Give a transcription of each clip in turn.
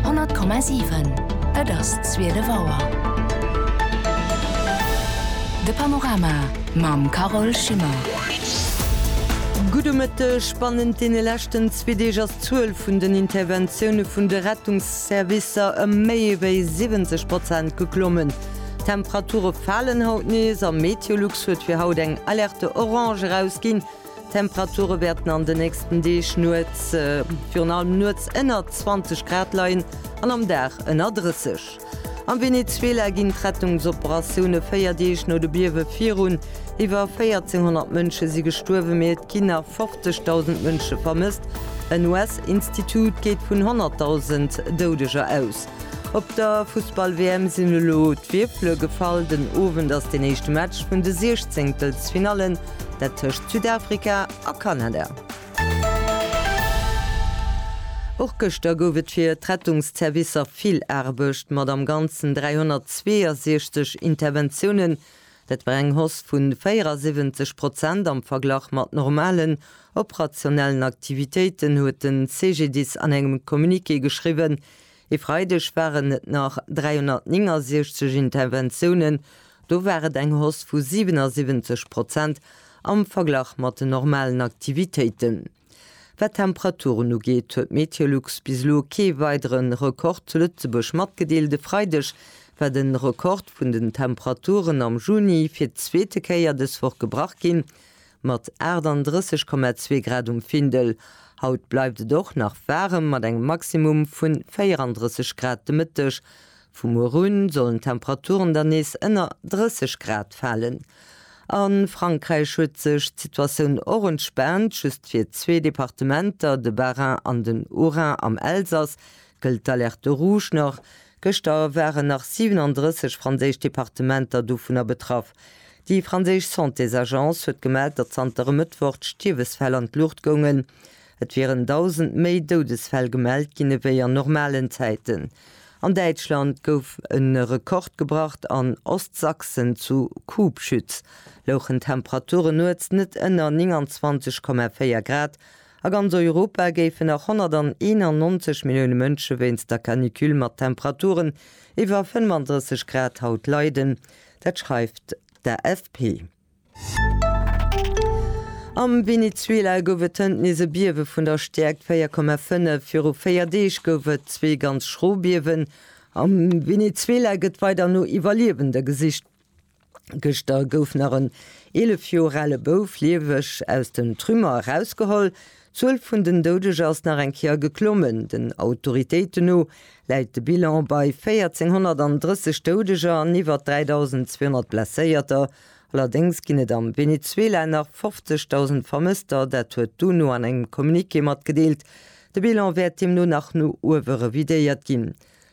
100,7 Et ass zwielef Auer. De Panorama mam Carole Schimmer. Gudde Mëtteg. Bannent deene leschten zwee Deeg ass d'Zuel vun den Interventioune vun de Rettungsservicer ëm méi ewéi 70 Prozent geklommen. D'Temperature falen haut nees a MeteoLux huet fir haut eng Alerte Orange erausginn, D'Temperature wäerten an de nächsten Deeg nuets virun allem nuets ënner 20 Grad leien an am Dag ënner 30. Am Venezuela ginn d'Rettungsoperatioune véier Deeg no de Biewe virun. Iwwer 1400 Mënsche si gestuerwen, mee et ginn nach 50.000 Mënsche vermësst. En US-Institut geet vun 100.000 Doudeger aus. Op der Fussball-WM sinn elo d'Wierfele gefall. Den Owend ass deen éischte Match vun de Siechzéngtelsfinallen, dat tëscht Südafrika a Kanada. Och gëschter gouf et fir d'Rettungsservicer vill Aarbecht, mat am Ganzen 362 Interventiounen. Dat war eng Hausse vu 74 Prozent am Verglach mat normalen operationellen Aktivitéiten, huet den CGDIS an engem Communiqué geschriwwen. E Freideg waren et nach 369 Interventiounen, do war et eng Hausse vu 77 Prozent am Verglach mat den normalen Aktivitéiten. Wat d'Temperaturen ugeet, huet Meteolux bis elo kee weidere Rekord zu Lëtzebuerg matgedeelt. E Freideg war den Rekord vun den Temperaturen am Juni fir d'zweete Kéier dës Woch gebrach ginn. Mat 38,2 Grad um Findel. Haut bleift et och nach waarem mat engem Maximum vun 34 Grad de Mëtteg. Vu muer un sollen d'Temperaturen dann nees ënner 30 Grad falen. A Frankräich huet sech d'Situatioun och entspaant, just fir zwee Departementer, de Bas-Rhin an den Haut-Rhin. Am Elsass gëllt d'Alerte rouge nach, Gëschter waren nach 37 franséisch Departementer dovunner betraff. Déi franséisch Santésagence huet gemellt, datt zanter e Mëttwoch d'Stierwesfäll an d'Luucht goungen. Et wieren 1.000 méi Doudesfäll gemellt ginn ewéi an normalen Zäiten. An Däitschland gouf e Rekord gebracht, an Ostsachsen zu Kubschütz louchen d'Temperaturen nuets net ënner 29,4 Grad A ganz Europa géifen nach 191 Millioune Mënsche wéinst der Canicule mat Temperaturen iwwer 35 Grad haut leiden. Dat schreift d'AFP. Am Venezuela gouf et hënt nees e Biewe vun der Stäerkt 4,5. Viru 4 Deeg gouf et zwee ganz schro Biewen. Am Venezuela gëtt weider no Iwwerliewende gesicht. Gëschter gouf nach en 11 Joer ale Bouf lieweg aus den Trümmer erausgeholl. D'Zuel vun den Doudeger ass nach eng Kéier geklommen. Den Autoritéiten no läit de Bilan bei 1.430 Doudeger an iwwer 3.200 Blesséierter. Allerdéngs ginn et am Venezuela nach 50.000 Vermësster, dat huet d'UNO an engem Communiqué matgedeelt. De Bilan wäert deemno nach no uewe revidéiert ginn.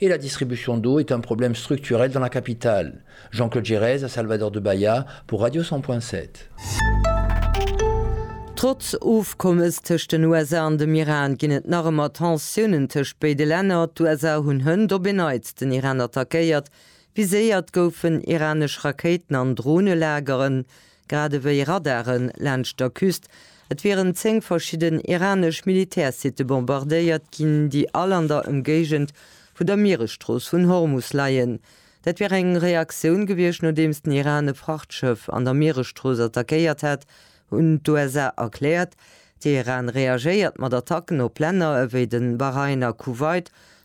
Et la distribution d'eau est un problème structurel dans la capitale, Jean-Claude Giresse a Salvador de Bahia pour Radio 100 point 7. Trotz Ofkommes tëscht den USA an dem Iran ginn et nach ëmmer Tensiounen tëscht béide Länner. D'USA hunn hënt op en Neits den Iran attackéiert. Viséiert goufen iranesch Rakéiten an Dronelageren. grad ewéi Radare laanscht der Küst. Et wieren 10 verschidden iranesch Militärsitte bombardéiert ginn, déi all an der Ëmgéigend vu der Mieresstrooss vun Hormus leien. Dat wier eng Reaktioun gewiescht, nodeems den Iran e Frachtschëff an der Mieresstrooss attackéiert hätt, hunn d'USA erkläert. Teheran reagéiert mat Attacken op Länner ewéi de Bahrain a Kuwait,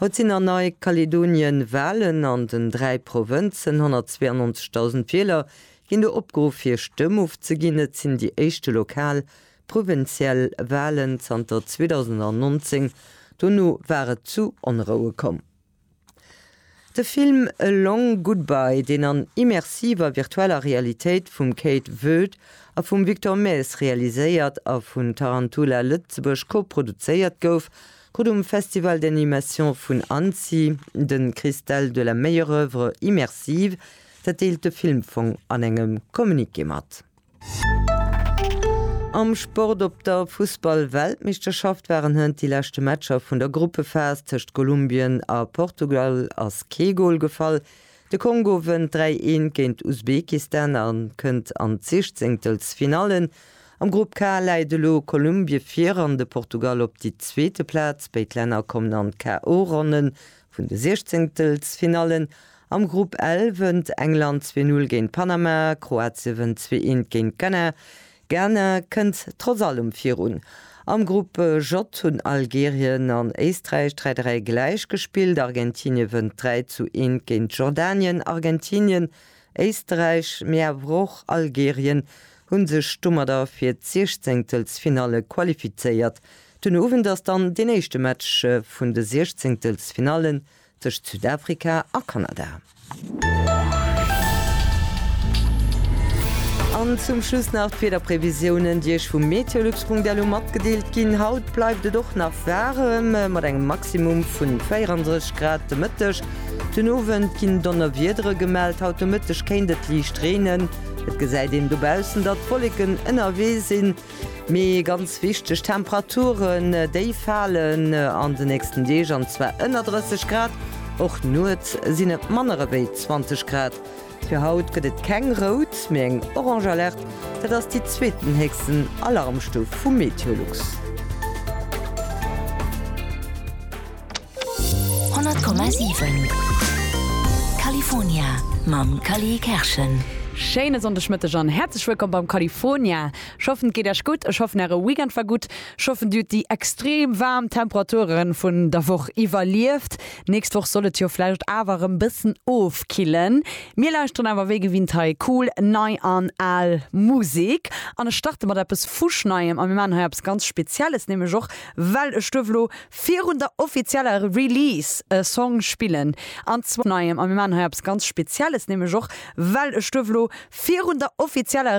Haut sinn a Nei-Kaledonien Walen an den dräi Provënzen. 192.000 Wieler ginn do opgeruff hir Stëmm ofzeginn. Et sinn déi éischte lokal, provinziell, Walen zanter 2019. Dono war et zu Onroue komm. De Film A Long Goodbye, deen an immersiver virtueller Realitéit vum Kate Voet a vum Victor Maes realiséiert a vun Tarantula Lëtzebuerg koproduzéiert gouf, krut um Festival d'animation vun Annecy de Cristal de la meilleure œuvre immersive. Dat deelt de Filmfong an engem Communiqué mat. Am Sport, Op der Fussball-Weltmeeschterschaft waren hënt déi leschte Matcher vun der Gruppephas. Tëscht Kolumbien a Portugal ass kee Gol gefall. De Kongo wënnt 3, 1 géint Usbekistan a kënnt an d'Sichzéngtelsfinallen. Am Grupp K läit elo Kolumbie vir an de Portugal op déi zweete Plaz. Béid Länner kommen an d'KO-Ronnen Vun de Siechzehntelfsfinallen am Grupp L wënnt England zwee Null géint Panama, Kroatie wënnt zwee eent géint Ghana, Ghana kënnt trotz allem virun. Am Grupp J hunn Algerien an Éisträich dräi dräi gläich gespillt, Argentinie wënnt dräi zu eent géint Jordanien, Argentinien, Éisträich, mee awer och Algerien hunn sech domadder fir d'Siechzehntelfsfinalle qualifizéiert. Den Owend ass dann deen éischte Match vun de Siechzéngtelsfinallen tëscht Südafrika a Kanada. An zum Schluss nach d'Wiederprevisiounen, déi Iech vu meteolux.delu matgedeelt ginn. Haut bleift et och nach waarem, mat engem Maximum vun 34 Grad de Mëtteg. Den Owend ginn Donnerwiedere gemellt, haut de Mëtteg kéint et liicht reenen. Et gesäit een dobaussen, datt Wolleken ënnerwee sinn. Mee ganz wichteg, d'Temperaturen, déi falen an de nächsten Deeg, an zwar ënner 30 Grad. Och nuets sinn et manner ewéi 20 Grad. Fir haut gëtt et keng rout, mee eng orange Alerte. Dat ass déi zweetenhéchsten Alarmstuf vu Meteolux. 100,7 California mam Cally Kerschen. Schéine Sonndegmëtteg an häerzlech wëllkomm beim California. Ech hoffen et geet Äech gutt, ech hoffen Äre Weekend war gutt, ech hoffen Dir hutt déi extrem waarm Temperature vun der Woch iwwerlieft. Nächst Woch soll et jo vläicht awer erëm bëssen ofkillen. Mir lauschteren awer wéi gewinnt hei cool nei an al Musek an ech starte mat eppes fuschneiem a mir maachen hei eppes ganz Spezielles, nämlech och well e Stuerf elo Virun der offizieller Release e Song spillen, an zwar. Neiem, a mir maachen hei eppes ganz Spezielles, nämlech och well ech duerf elo virun der offizieller.